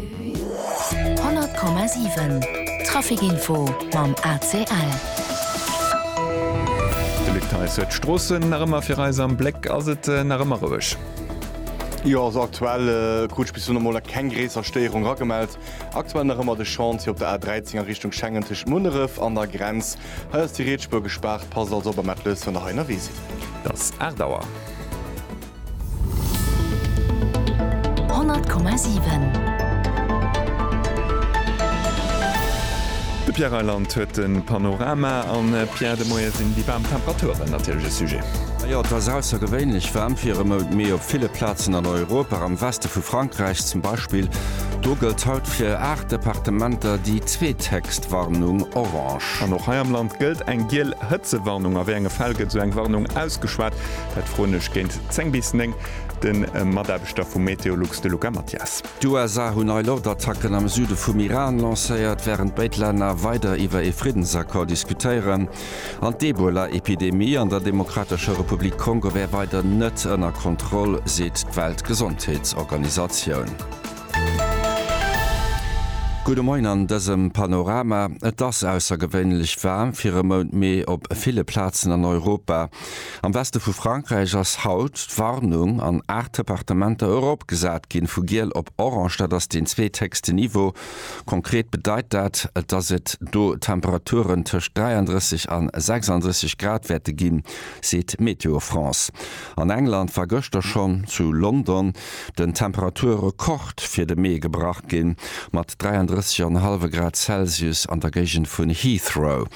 100,7 Trafic Info mam ACL. De Luc Theis huet d'Stroossen nach ëmmer fir eis am Bléck. Ass et nach ëmmer roueg? Jo, also aktuell krut ech bis elo nach mol keng gréisser Stéierung ragemellt. Aktuell nach ëmmer de Chantier op der A13 a Richtung Schengen tëscht Munneref an der Grenz. Hei ass déi Rietsspuer gespaart. Passt also op a maacht lues, wann der hei ënnerwee sidd. Et ass 8 Auer. De Pierre Reyland huet de Panorama. An Pierre, de Moie sinn déi waarm Temperaturen natierlech e Sujet. Jo, et ass aussergewéinlech waarm fir e Mount Mee op ville Plazen an Europa. Am Weste vu Frankräich zum Beispill, do gëllt haut fir 8 Departementer déi zweetheckst Warnung, orange. An och hei am Land gëllt eng giel Hëtzewarnung. A wéi enge Fäll gëtt esou eng Warnung ausgeschwat? Dat froen ech géint 10 bis 9 de Mataarbechter vu Meteolux, de Luca Mathias. D'USA hunn nei Loftattacken am Süde vum Iran lancéiert, wärend béid Länner weider iwwer ee Friddensaccord diskutéieren. An d'Ebola-Epidemie an der Demokratescher Republik Kongo wär weider net ënner Kontroll, seet d'Weltgesondheetsorganisatioun. Gudde Moien an dësem Panorama, Et ass aussergewéinlech waarm fir e Mount Mee op ville Plazen an Europa. Am Weste vu Frankräich ass haut d'Warnung an aacht Departementer eropgesat ginn, vu giel op orange. Dat ass deen zweethéchsten Niveau. Konkret bedeit dat, dass et do Temperaturen tëscht 33 an 36 Grad wäerte ginn, seet Météo France. An England war gëschter schonn zu London den Temperaturrekord fir de Mee gebrach ginn, mat 33,5 Grad Celsius an der Géigend vun Heathrow.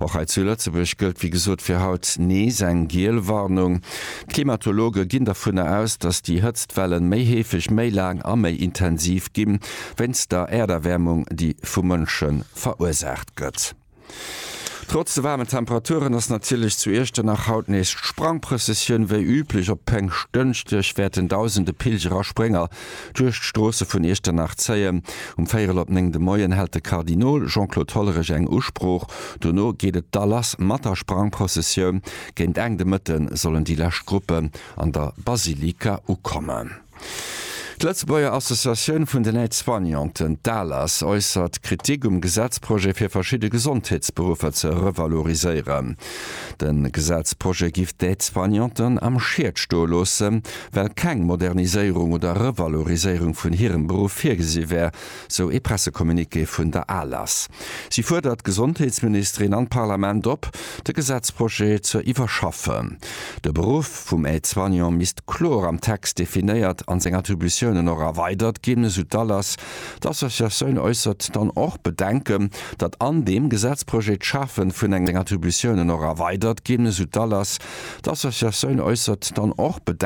Och hei zu Lëtzebuerg gëllt wéi gesot fir haut nees eng giel Warnung. D'Klimatologe ginn dovunner aus, dass déi Hëtztwellen méi heefeg, méi laang a méi intensiv ginn, wéinst der Äerderwäermung, déi vu Mënsche verursaacht gëtt. Trotz de waarmen Temperaturen ass natierlech zu Iechternach haut nees d'Sprangprëssessioun. Wéi üblech op Péngschtdënschdeg wäerten dausende Pilger a Sprénger duerch d'Stroosse vun Iechternach zéien. Um véierel op néng de Moien hält de Kardinol Jean-Claude Hollerich eng Usprooch. Dono geet et da lass mat der Sprangprëssessioun. Géint Enn de Mëtte sollen déi lescht Gruppen an der Basilika ukommen. D'Lëtzebuerger Associatioun vun den Aide-soignanten, d'ALAS, äussert Kritik um Gesetzprojet fir verschidde Gesondheetsberuffer ze revaloriséieren. De Gesetzprojet giff d'Aide-soignanten am Schied stoe loossen, well keng Moderniséierung oder Revaloriséierung vun hirem Beruff virgesi wär. sou ee Pressecommuniqué vun der ALAS. Si fuerdert d'Gesondheetsministerin an d'Parlament op, de Gesetzprojet ze iwwerschaffen. De Beruff vum Aide-soignant misst kloer am Text definéiert an seng Attributiounen och erweidert ginn, esou d'ALAS. D'Associatioun äussert dann och Bedenken, datt an deem Gesetzprojet d'Schafe vun engem Attributiounen och erweidert ginn, esou d'ALAS. D'Associatioun äussert dann och Bedenken,